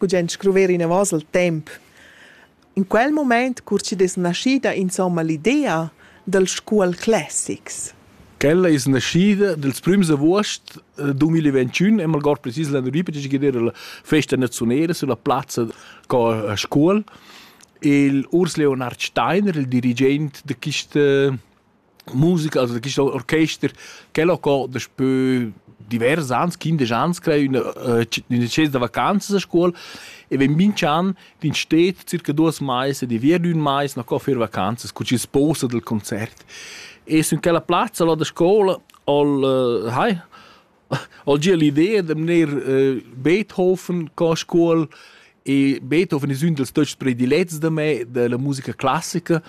gugent scruver inavos il temp. In quel moment curci es naschida insomma l'idea dal scuol classics. Quella es naschida dels prims avuost 2021 e malgord precis l'an ripetici che era la festa naziunera sulla plazza co scuol il Urs Leonard Steiner, il dirigent de quista Musica, also gist orchester, quel ho co daspö divers ans, quindesch ans, crei üna, äh, üna tschesa da vacanzas a scuol e vegn minch'an d'in stet circa duos mais e di via d'ün mais na co fer vacanzas cun schi sposa dal concert. E sün quella plazza là da scoula ha'l, äh, hai, Al gia l'idea da mener eh, Beethoven co a scuol e Beethoven es ün dals töchs predilets da me da la musica classica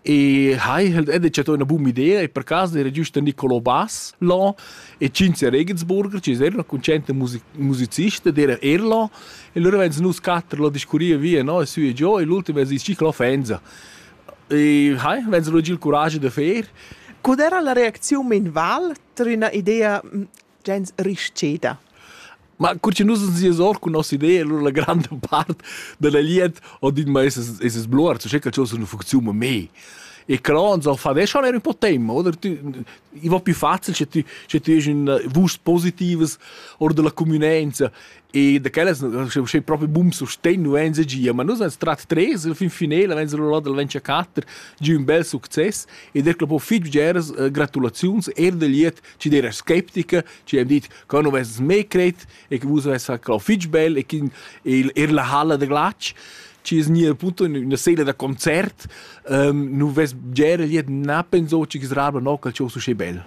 e hai halt ed chatto üna buna idea e per caso era giüst da Niccolò Bass là e Cinzia Regensburger, chi es eir üna cunscienta music musicista d'era er là e lura vains nus quatter là discurrìa via no e sü e giò e l'ultim es ist chi l'offensa. E hai, vegns lu giu il curaschi da fer. Cud era la reacziun min val tar üna idea mm, gens rischeda? Ma cur che nus uns ies or cun nossa idea, allura la granda part dalla glieud ho dit ma esas esas bluar, so che calciò sun funcziun ma mei. E cro uns ho fa ve schon er un po' tempo, oder tu i va più facil sche tu sche tu hes un eh, vust positivas oder della cumünenza E da quellas sche propi bum sustegn nu en gia, ma nus ans trat tres il fin finela vens rolla dal Venture 4 giu un bel success e der clo fitg bgeras uh, gratulaziuns er del liet ci der skeptica, ci hem dit che nu vess me cret e che vus vess clo fitg bel e che er la halla de glac ci es nia punto una sela da concert, um, nu vess bgera liet na penso ci gisrabla no cal ciò su bel.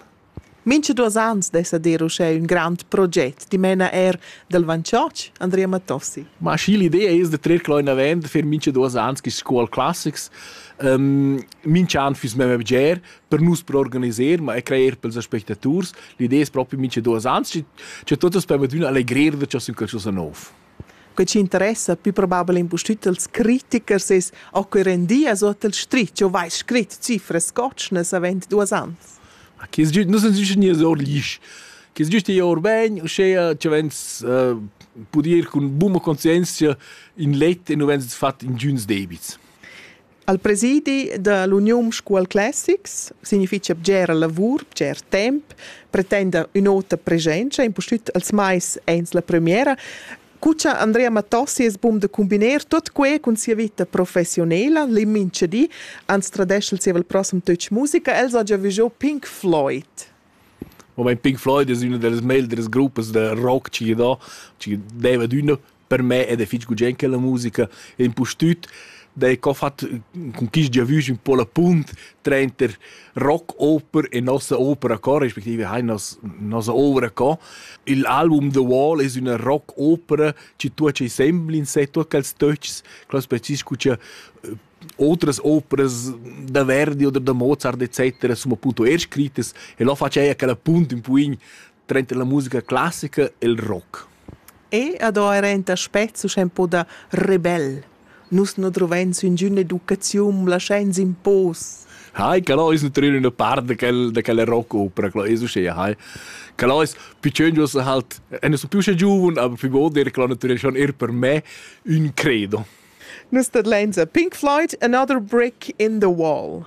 Mincha duos ans dessa dir uschè ün grand proget, dimena eir dal Vanchotsch, Andrea Mattossi. Ma schi l'idea es da trer quel inavant per mincha duos ans quist Scuol Classics. Um, mincha an füss memma bger per nus per organiser, ma e crajer pels aspectaturs. L'idea es propi mincha duos ans, cha tuot as permettüna allegrer da cha sün qualchosa nouv. Quei ci interessa più probabel impustüt als critichers es o que rendias o tel stritg, o vais scrit cifras scotschnas avent duos ans. Ma che es giüst, nus sun güst gnüs our l'isch. Che es giüst ir our bain, uschea ci vegns uh, pud ir cun buna conscienzia in let e nu vegns fat ingüns debits. Al presidi da l'Uniun Scuol Classics significha bgera lavur, bger temp, pretenda ün'ota presenza, impustüt als mais ains la premiera. Cu cha Andrea Matossi es bun da cumbiner tuot que cun sia vita professionela, l'immincha di, ans tradescha il zievel prossem Töch Musica, el s'ha già vigiò Pink Floyd. Moment Pink Floyd es üna da las meglieras gruppas da rock chi gy do, chi deva d'üna per me ed è fich gugent che la musica e impustüt da co fat cun quist giavüsch ün po la punt trainter rock-oper e nossa opera co respektive hai nos nossa ouvra co. Il album The Wall es üna rock-opera chi tuocha insembel in sé, tuot quels töchs, quels precis cha otras operas da Verdi oder da Mozart etc. sun appunto er scrittas e lo faceia quella punt ün poin Trenta la musica classica e il rock. E ad era enta spezzo sche po da rebel. Nus no drovens üngüna educaziun, laschains impos. Hai, che lois nutrir una parte de quel, de quel rock opera, che lois usce, hai. Che lois picengios halt, e sono più sce giovun, aber più goder, che lo nutrir schon er per me un credo. Nus dat lenza Pink Floyd, Another Brick in the Wall.